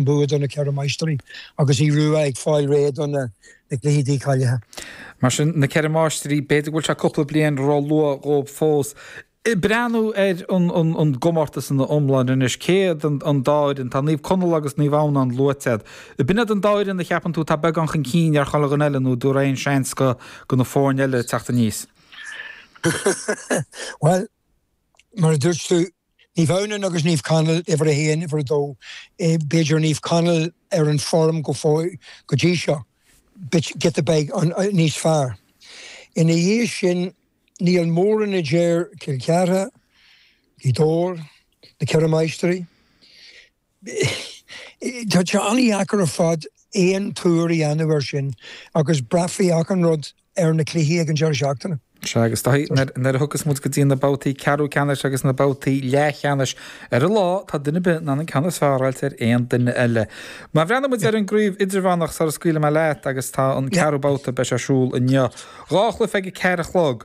mbua do na Ceithre Máistrí agus Uí Ruadh ag fáil tríd do na cluichí dícháilithe. Mar sin, na Ceithre Máistrí, b'fhéidir go bhfuil sé cúpla bliain ró-luath dhóibh fós breathnú ar an gcomórtas ina iomláine anois. Cé hiad an dá fhoireann? Tá Naomh Conaill agus Naomh Adhamhnán luaite agat. B'in iad an dá fhoireann a cheapann tú atá beagán chun cinn ar chuile dhuine eile nó an dtabharfá aon seans do na foirne eile ag teacht aníos? Bhuel, mar a dúirt tú, Naomh Adhamhnán agus Naomh Conaill, uimhir a haon, uimhir a dó, b'fhéidir Naomh Conaill ar an form go fóill go dtí seo, bit, giota beag níos fearr. Ina dhiaidh sin, níl mórán eadar Cill Chartha, Gaoth Dobhair, Na Ceithre Máistrí, Tá sé an-dheacair ar fad aon tuar a dhéanamh air sin agus braithfidh achan rud ar na cluichí ag an deireadh seachtaine. Sea, agus nuair a thiocfas muid go dtí na babhtaí ceathrú ceannais agus na babhtaí leathcheannais, ar an lá, tá duine ar bith in ann an ceann is fearr a fháilt ar aon duine eile. Má bhreathnaíonn muid ar an gcraobh idirmheánach sula scaoilfidh mé leat, agus tá an ceathrú babhta, beidh sé ar siúl inniu. Dhá chluiche ag a ceathair a chlog.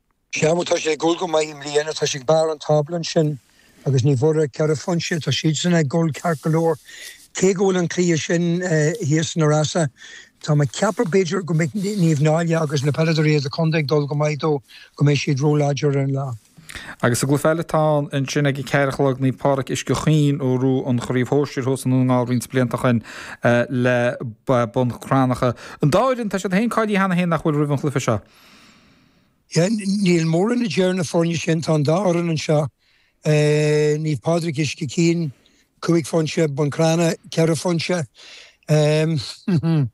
Sea, tá sé ag dul go maith i mbliana, tá sé ag barr an tábla ansin agus ní bhfuair ach ceithre phointe sé, tá siadsan ag dul ceart go leor. Cé go bhfuil an cluiche sin thíos sna Rosa, tá mé ag ceapadh b'fhéidir go mbeidh Naomh Náille agus na peileadóirí as an chontae ag dul go maith dó, go mbeidh siad ró-láidir ar an lá. Agus sa gcluiche eile atá ann ansin ag a ceathair a chlog, Naomh Pádraig Uisce Chaoin a bhuaigh an Chraobh Shóisir thuas i nDún na nGall roinnt blianta ó shin is Bun Cranncha. An dá fhoireann, tá siad sin cáilithe cheana féin nach bhfuil roimh an chluiche seo. Níl mórán eadar na foirne sin, tá an dá fhoireann anseo, Naomh Pádraig Uisce Chaoin, cúig phointe, Bun Cranncha, ceithre phointe. Naomh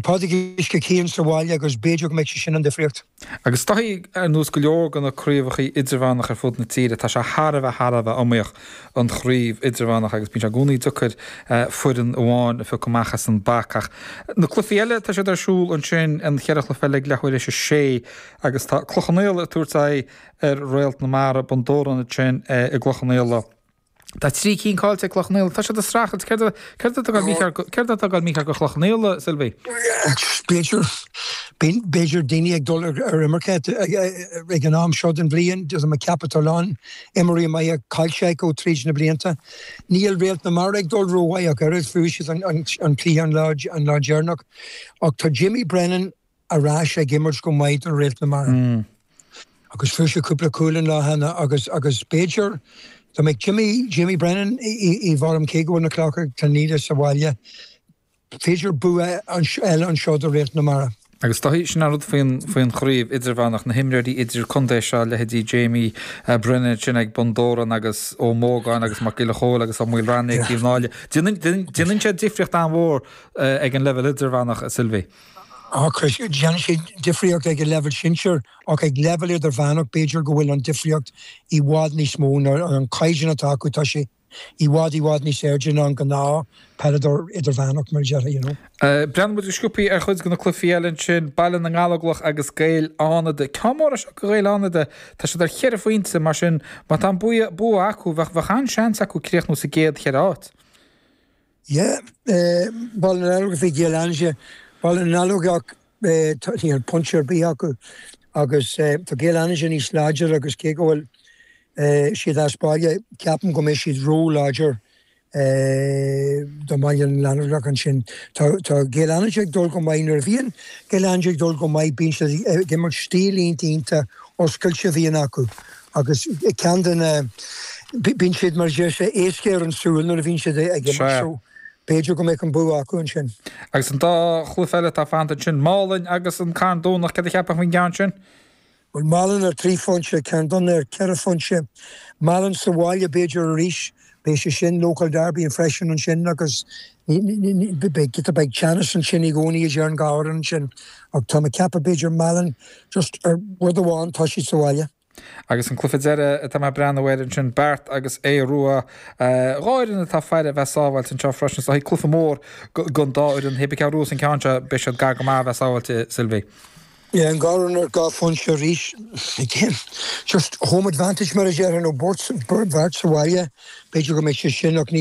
Pádraig Uisce Chaoin sa bhaile agus b'fhéidir go mbeidh sé sin an difríocht. Agus is dóigh ar nós go leor de na craobhacha idirmheánacha ar fud na tíre, tá sé thar a bheith thar a bheith iomaíoch. an Chraobh Idirmheánach agus bíonn sé i gcónaí deacair foireann amháin a phiocadh amach as an bpaca. Ach na cluichí eile, tá siad ar siúl ansin, na ceithre chluiche eile ag leathuair tar éis a sé agus tá Cloich Cheann Fhaola ag tabhairt aghaidh ar Réalt na Mara, Bun Dobhráin ansin i gCloich Cheann Fhaola. Tá trí cinn caillte ag Cloich Cheann Fhaola. Tá siad ag streachailt. Céard atá ag gabháil mícheart do Chloich Cheann Fhaola, Sylvie? B'fhéidir, b'fhéidir daoine ag dul ar imirce ag an am seo den bhliain, is é mo cheap atá ann. Imreoirí maithe caillte acu tríd na blianta. Níl Réalt na Mara ag dul ró-mhaith ach oiread, fuair siad an cluiche an lá deireanach, ach tá Jimmy Brennan ar ais ag imirt go maith do Réalt na Mara. Agus fuair sé cúpla cúl an lá cheana agus agus b'fhéidir dá mbeadh Jimmy Jimmy Brennan i bhform cé go bhfuil na Cloich Cheann Fhaola sa bhaile, B'fhéidir bua eile anseo do Réalt na Mara. Agus tá sin an rud faoin chraobh idirmheánach, na himreoirí idir-chontae seo, a leithéidí Jamie Brennan ansin ag Bun Dobhráin agus Ó Mógáin agus Mac Giolla Chóill agus Ó Maoilreanaigh ag Naomh Náille. Déanann sé difríocht an-mhór ag an leibhéal idirmheánach, a Sylvie. Of course, déanann sé difríocht ag an leibhéal sinsir ach ag leibhéal idirmheánach b'fhéidir go bhfuil an difríocht i bhfad níos mó, an caighdeán atá acu, tá sé I bhfad, i bhfad níos airde ná an gnáth peileadóir idirmheánach mar a déarfá, you know. Breathnóidh muid go sciopthaí ar chuid de na cluifí eile ansin, Baile na nGallóglach agus Gaeil Fhánada. Ceann mór é seo do Ghaeil Fhánada, tá siad ar cheithre phointe, mar sin má tá an bua acu, bheadh an-seans acu críochnú sa gcéad cheithre áit. Yeah, Baile na nGallóglach v Gaeil Fhánada. Baile na nGallóglach, níl pointe ar bith acu agus tá Gaeil Fhánada níos láidre agus cé go bhfuil siad as baile ceapaim go mbeidh siad róláidir do Bhaile na nGallóglach ansin. Tá tá Gaeil Fhánada ag dul go maith nuair a bhíonn Gaeil Fhánada ag dul go maith bíonn siad ag imirt stíl iontach oscailte a bhíonn acu Agus ceann de na, bíonn siad mar a deir sé, éasca ar an súil nuair a bhíonn siad ag imirt so b'fhéidir go mbeadh an bua acu ansin. Agus an dá chluiche eile atá fanta ansin, Málainn agus an Carn Domhnach, céard a cheapfá faoin gceann sin? Bhuel, Málainn ar trí phointe, Carn Domhnach ar ceithre phointe. Málainn sa bhaile b'fhéidir arís Beidh sé sin, local derby, freisin ansin agus beidh teannas ansin i gcónaí, idir an dá fhoireann ansin. Ach tá mé ag ceapadh b'fhéidir Málainn, just ar rud amháin, tá siad sa bhaile. Agus an cluiche deireadh atá mé ag breathnú air ansin, Beart agus Aodh Rua. Dhá fhoireann atá ag iarraidh a bheith sábháilte anseo freisin, so beidh cluiche mór don dá fhoireann. Bua ag Aodh Rua sa gceann seo, beidh siad gar go maith a bheith sábháilte, Sylvie. Beidh, an dá dhream ar dhá phointe arís. Again, just home advantage mar a déarfainn, nó Beart sa bhaile, b'fhéidir go mbeidh sé sin ach ní.